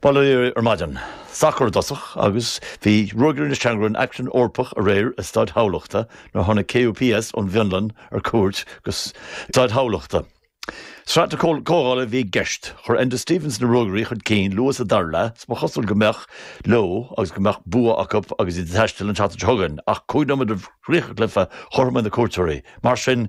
Bail oraibh ar maidin. Sacar i dtosach agus bhí Ruagairí na Seamróg in aicsean Eorpach aréir i Staid Thamhlachta nuair a tháinig KUPS ón bhFionlainn ar cuairt go Staid Thamhlachta. Sraith na Comhdhála a bhí i gceist. Chuir Enda Stevens na Ruagairí chun cinn luath sa dara leath is ba chosúil go mbeadh leo agus go mbeadh bua acu agus iad ag taisteal an tseachtain seo chugainn ach cúig nóiméad roimh chríoch an chluiche chothromaigh na cuairteoirí. Mar sin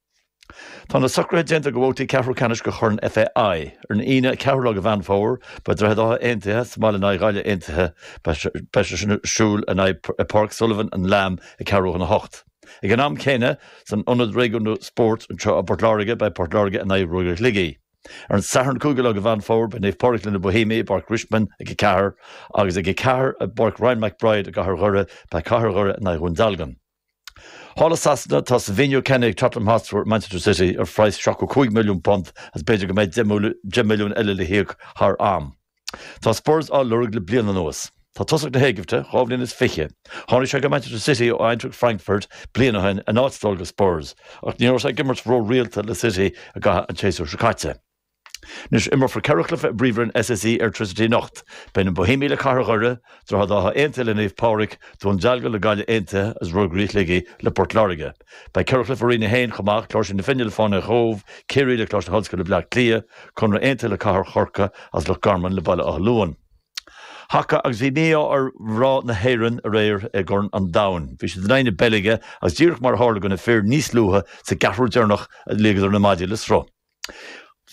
Tá na socruithe déanta do bhabhtaí ceathrú ceannais de Chorn FAI. Ar an Aoine 4ú lá de Mheán Fómhair, beidh Droichead Átha Aontaithe sa mbaile in aghaidh Ghaillimh Aontaithe. Beidh sé sin ar siúl in aghaidh i bPáirc Sullivan and Lambe, ag ceathrú chun a hocht. Ag an am céanna, san Ionad Réigiúnda Spóirt anseo i bPort Láirge, beidh Port Láirge in aghaidh Ruagairí Shligigh. Ar an Satharn 5ú lá de Mheán Fómhair, beidh Naomh Pádraig leis na Bóihéamaigh i bPáirc Richmond ag a ceathair, agus ag a ceathair i bPáirc Ryan McBride i gCathair Dhoire, beidh Cathair Dhoire in aghaidh Dhún Dealgan. Thall i Sasana tá Savinho ceannaithe ag Tottenham Hotspur ó Manchester City ar phraghas £75 milliún agus b'fhéidir go mbeidh deich milliún eile le híoc thar am. Tá Spurs á lorg le bliain anuas. Tá tosach na hÉigipte dhá bhliain is fiche. Tháinig sé go Manchester City ó Eintracht Frankfurt bliain ó shin in áit dul go Spurs, ach ní raibh sé ag imirt ró-rialta le City i gcaitheamh an tséasúir seo caite. Anois imreofar ceithre chluiche i bPríomhroinn SSE Airtricity anocht. Beidh na Bóihéamaigh le Cathair Dhoire, Droichead Átha Aontaithe le Naomh Pádraig, Dún Dealgan le Gaillimh Aontaithe agus Ruagairí Shligigh le Port Láirge. Beidh ceithre chluiche i Roinn 1 chomh maith, Cláirsigh na Finne le Fánaithe Chóbh, Ciarraí le Coláiste Ollscoile Bhleá Cliath, Conradh Aontaithe le Cathair Chorcaí agus Loch Garman le Baile Átha Luain. Haca agus bhí mí-ádh ar mhná na hÉireann aréir i gCorn an Domhain. Bhí siad in aghaidh na Beilge agus díreach mar a tharla do na fir níos luaithe sa gceathrú deireanach a ligeadar na maidí le sruth.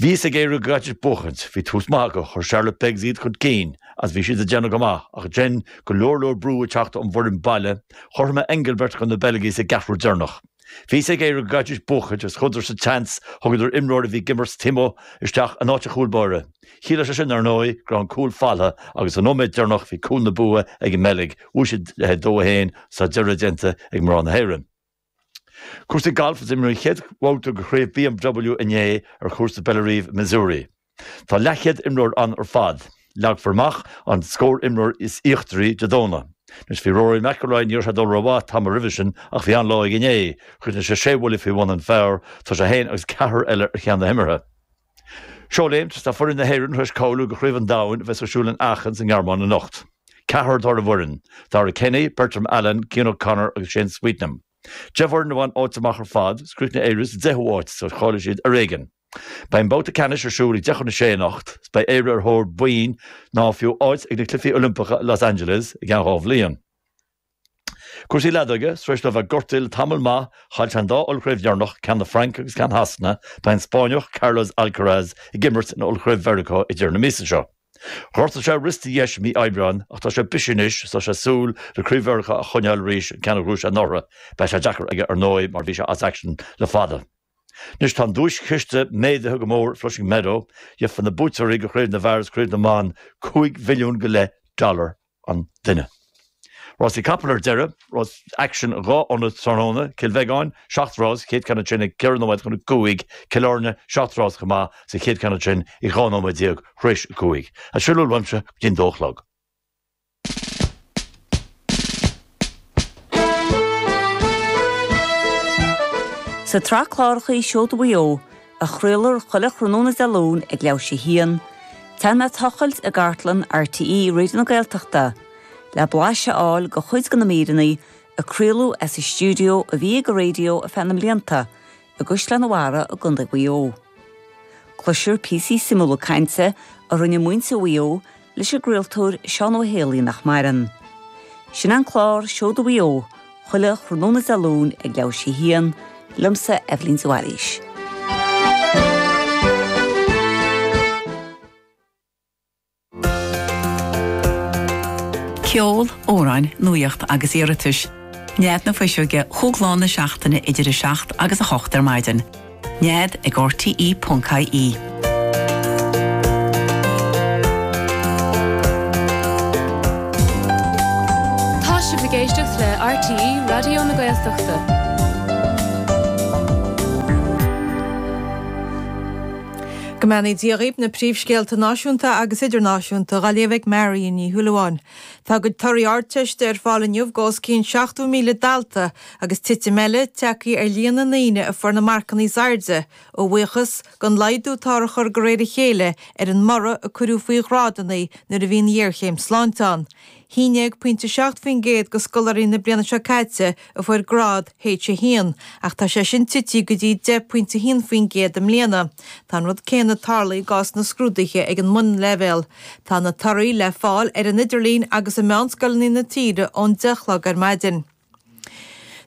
Bhí a fhios ag Éire go gcaithfidís buachaint, bhí tús maith acu, chuir Charlotte Beggs iad chun cinn agus bhí siad ag déanamh go maith ach dhein go leor leor brú ag teacht ón bhfoireann baile, chothromaigh Englebert do na Beilgigh sa gceathrú deireanach. Bhí a fhios ag Éire go gcaithfidís buachaint agus chuadar sa tseans, thugadar imreoir a bhí ag imirt taobh amuigh isteach in áit an chúil báire. Chiallaigh sé sin, ar ndóigh, go raibh an cúl folamh agus sa nóiméad deireanach bhí cúl na bua ag an mBeilg, bhuaigh siad le 2 1, sa deireadh déanta ag mná na hÉireann. Cúrsaí gailf is imríodh an chéad bhabhta de Chraobh BMW inné ar Chúrsa Bellerive i Missouri. Tá leathchéad imreoir ann ar fad. Leagfar amach an scór imreoir is íochtaraí Dé Domhnaigh. Anois bhí Rory McIlroy ní raibh sé ag dul rómhaith tamall roimhe sin ach bhí an-lá aige inné. Chríochnaigh sé sé bhuille faoi bhun an phar. Tá sé fhéin agus ceathrar eile ar cheann na himeartha. Seóléim, tá foireann na hÉireann tar éis cáiliú do Chraobh an Domhain a bheas ar siúl in Aachen sa nGearmáin anocht. Ceathrar atá ar an bhfoireann, Darragh Kenny, Bertram Allen, Cian O'Connor agus Shane Sweetnam. Deich bhfoireann a bhain áit amach ar fad, is chríochnaigh Éire sa 10ú háit is cháiligh siad ar éigin. Beidh an babhta ceannais ar siúl ag deich chun a sé anocht is beidh Éire ar thóir boinn nó fiú áit ag na Cluichí Oilimpeacha i Los Angeles i gceann dhá bhliain. Cúrsaí leadóige, Tar éis dó a bheith gortaithe le tamall maith, chaill sé an dá ollchraobh dheireanach, ceann na Fraince agus ceann Shasana, beidh an Spáinneach Carlos Alcaraz ag imirt in ollchraobh Mheiriceá ag deireadh na míosa seo. Ghortaigh sé a wrist dheis mí Aibreáin ach tá sé bisithe anois is tá sé ag súil le craobh Mheiriceá a choinneáil arís, an ceann a bhuaigh sé anuraidh. Beidh sé deacair aige ar ndóigh mar bhí sé as aicsean le fada. Anois tá an duaischiste méadaithe go mór ag Flushing Meadow, gheobhaidh na buaiteoirí de chraobh na bhfear is craobh na mban, cúig mhilliún go leith dollar an duine. Rásaí capall ar deireadh, aicsin in dhá ionad tráthnóna, Cill Bheagáin, seacht rás, chéad ceann ansin ag ceithre nóiméad chun a cúig, Cill Airne, seacht rás chomh maith is an chéad cheann ansin ag dhá nóiméad déag tar éis a cúig. Sin a bhfuil uaimse go dtí'n dó a chlog. Sa tsraith cláracha Seoda Mhaigh Eo, a chraoltar chuile thráthnóna Dé Luain ag leathuair théis a haon, téann mé ag tochailt i gcartlann RTÉ Raidió na Gaeltachta le blais a fháil de chuid de na míreanna a craoladh as an stiúideo a bhí ag an raidió ar feadh na mblianta i gCaisleán an Bharraigh i gContae Mhaigh Eo. Cloistear píosaí suimiúla cainte a rinne muintir Mhaigh Eo leis an gcraoltóir Seán Ó hÉalaí nach maireann. Sin an clár Seoda Mhaigh Eo chuile thráthnóna Dé Luain ag leathuair théis a haon, liomsa, Eibhlín de Bhailís. Ceol, amhráin, nuaíocht agus iarratais. Nead na Fuiseoige chuile lá den seachtaine idir 7 agus 8 ar maidin. Nead ag RTE.ie. Tá sibh ag éisteacht le RTE Raidió na Gaeltachta. Go mbeannaí Dia dhaoib na príomhscéalta náisiúnta agus idirnáisiúnta dá léamh ag Marion Ní Shúilleabháin. Tá a gcuid torthaí Ardteiste ar fáil inniu do os cionn 70,000 dalta agus titim eile tagtha ar líon na ndaoine a fuair na marcanna is airde, a bhuíochas don laghdú atá á chur de réir a chéile ar an mborradh a cuireadh faoi ghrádanna nuair a bhí an ghéarchéim sláinte ann. Sin aon déag pointe 7 faoin gcéad de scoláirí na bliana seo caite a fuair grád H1, ach tá sé sin tite go dtí 10 pointe 1 faoin gcéad i mbliana. Tá an rud céanna ag tarlú i gcás na scrúduithe ag an mbunleibhéal. Tá na torthaí le fáil ar an idirlíon agus i meánscoileanna na tíre ón 10 a chlog ar maidin.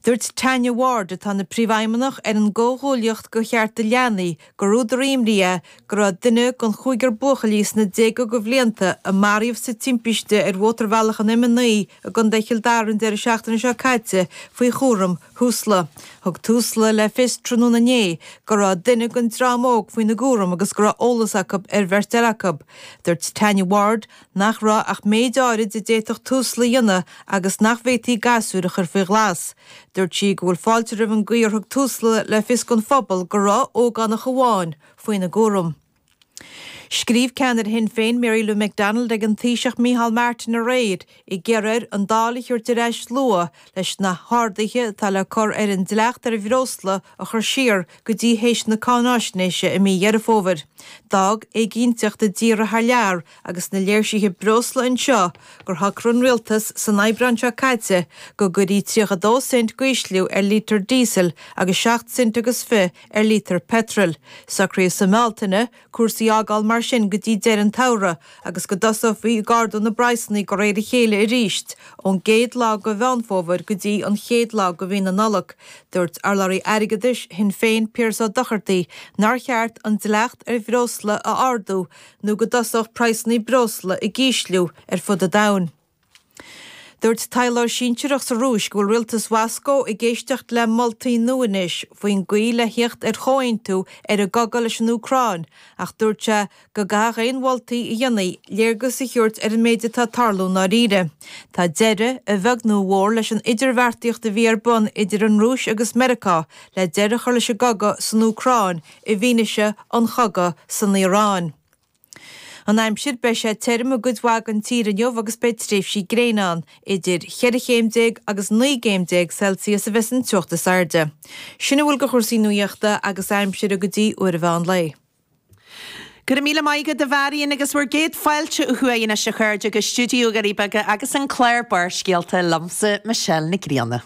Dúirt Tanya Ward, atá ina Príomhfheidhmeannach ar an gComhghuaillíocht do Chearta Leanaí, gur údar imní é go raibh duine den chúigear buachaillí sna déaga de bhlianta a maraíodh sa timpiste ar mhótarbhealach an M9 i gContae Chill Dara an deireadh seachtaine seo caite faoi chúram Thusla. Thug Tusla le fios tráthnóna inné go raibh duine den dream óg faoina gcúram agus go raibh eolas acu ar bheirt eile acu. Dúirt Tanya Ward, nach raibh ach méid áirid a d'fhéadfadh Tusla a dhéanamh agus nach bhféadfaí gasúir a chur faoi ghlas. Dúirt sí go bhfuil fáilte roimh an gcaoi ar thug Tusla le fios don phobal go raibh ógánach amháin faoina gcúram. Scríobh ceannaire Shinn Féin Mary Lou McDonald ag an Taoiseach Micheál Martin aréir ag iarraidh air an Dáil a thabhairt ar ais luath leis na harduithe atá le cur ar an dleacht ar bhreosla a chur siar go dtí théis na cáinaisnéise i mí Dheireadh Fómhair. D'fhág éiginnteacht na dtíortha thar lear agus na léirsithe breosla anseo gur shocraigh an Rialtas san Aibreán seo caite go gcuirfí 32 cent d'ísliú ar lítear díosail agus 7 cent agus fiche ar lítear peitril. Socraíodh sa mBealtaine cúrsaí a fhágáil mar sin go dtí deireadh an tsamhraidh agus go dtosófaí ag ardú na bpraghsanna de réir a chéile arís ón gcéad lá de Mheán Fómhair go dtí an chéad lá de Mhí na Nollag. Dúirt urlabhraí airgeadais Shinn Féin Piaras Ó Dochartaigh nár cheart an dleacht ar bhreosla a ardú nó go dtosódh praghsanna breosla ag ísliú ar fud an domhain. Dúirt taidhleoir sinsearach sa Rúis go bhfuil rialtas Mhoscó ag éisteacht le moltaí nua anois faoin gcaoi le thíocht ar chomhaontú ar an gcogadh leis an Úcráin ach dúirt sé go gcaithfeadh aon mholtaí a dhéanfaí léargas a thabhairt ar an méid atá ag tarlú i ndáiríre. Tá deireadh, a bheag nó a mhór, leis an idirbheartaíocht a bhí ar bun idir an Rúis agus Meiriceá le deireadh a chur leis an gcogadh san Úcráin i bhfianaise an chogadh san Iaráin. An aimsir, Beidh sé tirim i gcuid mhaith den tír inniu agus beidh tréimhsí gréine ann. Idir cheithre chéim déag agus naoi gcéim déag Celsius a bheas an teocht is airde. Sin a bhfuil de chúrsaí nuaíochta agus aimsire go dtí uair an mheán lae. Go raibh míle maith agat, a Mharion, agus bhur gcéad fáilte ó thuaidh anois, a chairde, go stiúideo na nDoirí Beaga agus an clár Barrscéalta, liomsa, Michelle Nic Grianna.